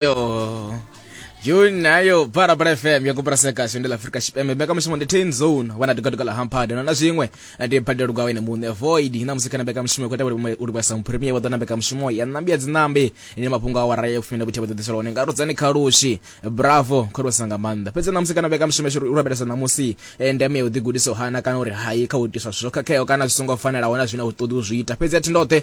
yo juni nayo barabara fm yakupurasa kahle ndi la afrika xipembe mbekamishumo ndi ten zone wana tikatuka la hampade nona swin'we ndi badelo kwa wena muṋe void na musika na mbekamishumo kweta uri kwasa muprimie wa ḓona mbekamishumo ya nambi ya dzinambi ine mafhungo a wara ya fumina vhuthiwa ḓaḓisela one nga rudzani kha lushi bravo khori wasa nga maanḓa fhedzi na musika na mbekamishumo yashu uri rabelesa ṋamusi eh, ndeme ya u ḓigudisa u hana kana uri hayi kha u itiswa zwithu zwo khakheaho kana zwi songo fanelaho na zwine a u ṱoḓi u zwi ita fhedzi a thi ndoṱhe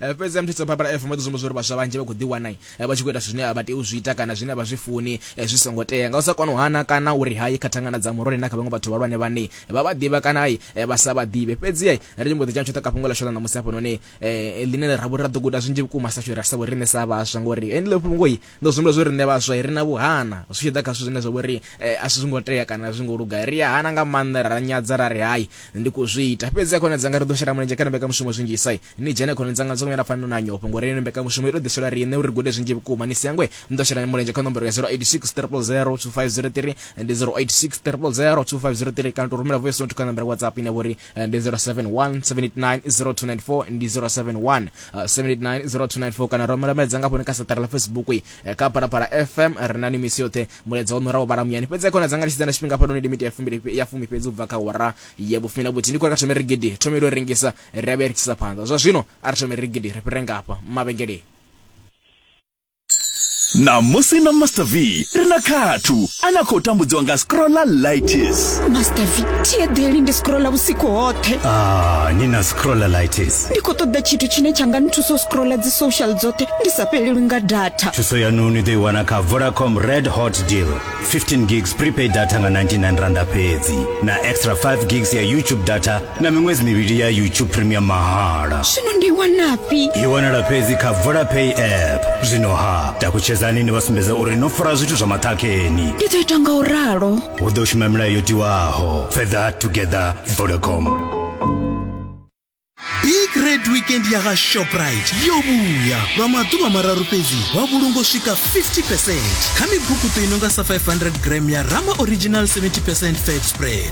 Eh, fhedzi ya mthitso barbara f mboḓi sumbedza uri vhaswa vhanzhi vha khou ḓiwana eh, vha tshi khou ita zwithu zwine a vha tei u zwi ita kana zwine vha zwi funi eh, zwi songo tea nga u sa kona u hana kana uri hayi kha thangana dza murole na kha vhaṅwe vhathu vhahulwane vhane vha vha ḓivha kana i vha sa vha ḓivhe fhedzi ri tshi mbo ḓi dzhena tshoṱhe ka fhungo ḽashu ḽa ṋamusi hafhanoni ḽine ra vhori ra ḓo guda zwinzhi vhukuma sa shuri ra sa vho riṋe sa vhaswa ngori enile fhungo i Ndo zwi humbula zwo riṋe vhaswa ri na vhuhana zwi tshi ḓa kha zwithu zwine zwa vhori eh, a si zwi ngo tea kana a zwi ngo luga ri a hana nga maanḓa ra nyadza ra ri hai ndi khou zwi ita fhedzi a khone dzanga ri ḓo shela mulenzhe kha mbekanyamushumo zwinzhisa ni dzhene khone dzanga dzo nyala fanela na nyofho ngori ino mbekanyamushumo i tou ḓiselwa riṋe uri gude zwinzhi vhukuma ni si yangwe ni ḓo shela mulenzhe kha nomboro ya 086 000 2503 ndi 086 000 2503 kana tou rumela voice note kha nomboro ya whatsapp ine vhori eh, ndi 0717890294 ndi 071 7890294 kana romela mulaedza nga fhone kha saṱari ḽa facebook eh, kha phalaphala fm ri na ni misi yoṱhe mulaedza wo nuraho vhala muyani fhedzi khona dza nga litshidza na tshifhinga fhanoni limiti ya fumi ya fumi fhedzi u bva kha wara ya vhufumi na vhuthihi ndi khou ya kha thome rigidi thome ilo rengisa ri a vhuya ri tshisa phanḓa zwa zwino a ri thome rigidi ri fhire ngafha mavhengeleni ṋamusi na master v ri na khathu a na khou tambudziwa nga scrolla lightis master v thieḓeli ndi scrolla vhusiku hoṱhe ah, ni na scrolla lightis ndi khou ṱoḓa tshithu tshine tsha nga nthusa u scrolla dzi social dzoṱhe ndi sa fhelelwi nga data thuso yaṋu ni ḓo i wana kha vodacom red hot deal 15 gigs prepaid data nga 99 randa fhedzi na extra 5 gigs ya youtube data na miṅwedzi mivhili ya youtube premium mahala zwino ndi wanafhi i wanala fhedzi kha vodapay app zwino ha takutshedzani ni vha sumbedza uri no fara zwithu zwa maṱhakheni ndi ḓo ita nga u ralo hu ḓo shuma milayo yo tiwaho further together vodacom big red weekend ya ga shoprite yo vhuya lwa maḓuvha mararu fhedzi wa vhulungo swika 50 percent kha mibukuto i nonga sa 500 gram ya rama original 70 percent fat spread